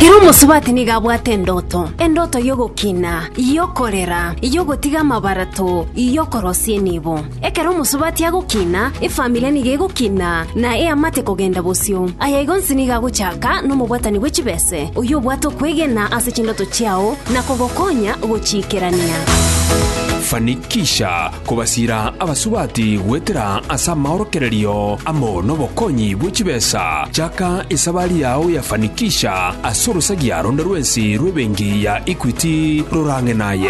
Ere omosubati nigo abwate endoto, endoto y'ogokina, y'okorera, y'ogotiga amabarato, y'okorosia enibo. Ekero omosubati agokina, efamiri nigo egokina, na eamate kogenda bosio. Aya igo onsi nigo agochaka nomobwatani bwe chibese, oyio obwate okwegena ase chindoto chiao na kogokonya gochiikerania. Fanikisha Kobasiira abasubati goetera ase amaorokererio amo nobokonyi bwe chibesa, chaka esabari yao ya Fanikisha ase orosagia ronde rwensi rw'ebenki ya Equity rorang'e naye.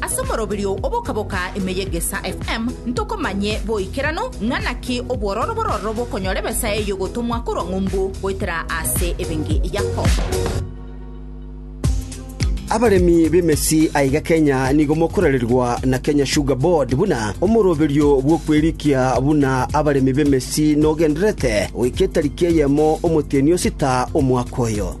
Ase omoroberio oboka-boka ime y'Egesaa FM ntokomanye boikeranu ng'a naki obwororo bororo bokonyora ebesa eye y'ogotomwa korwa ng'umbu goetera ase ebenge Yakobo. Abaremi b'emesi aiga Kenya nigo mokorererwa na Kenya Sugar Board buna omoroberio bw'okwerikia buna abaremi b'emesi nogendererete goika etariki eyemo omotienyi o sita omwaka oyo.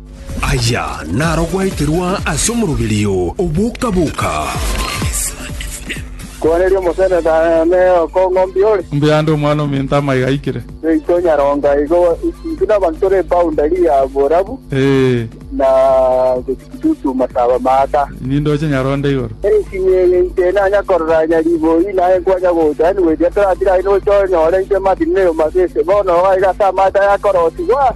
Aya naro gwaeterwa ase omoroberio o boka-boka. Koaneria omoseneta ne okong'ombia ore. Mbuya ande omwana ominto amaiga aikire. Seito Nyaronga igo intwe nabanto tore boundary ya borabu na Kitutu masaba maaka. Nindoche Nyaronda igoro. Ensinyo eye inche nanya korora nyariboi naye nkwanya gocha yaani goetera toratira aye nocha onyore intwe Martin ne Yomasi ase bono iga ase amache aya akorotigwa.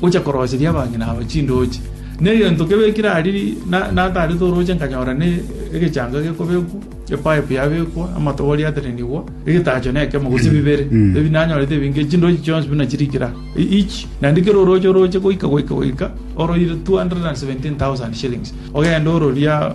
Gocha koroseria abang'ina aba chindooche, na egento kebekire aria natarete orooche nkanyora ne egechanga gekobekwa, epaipu yabekwa, amatobori atenenigwa, egetacho nekemo gose bibere. Ebi nanyorete ebi inke, chindooche chionsi buna chirikire aa, each, naende kera orooche orooche goika goika goika oroire 217,000 shillings. Ogende ororie aa.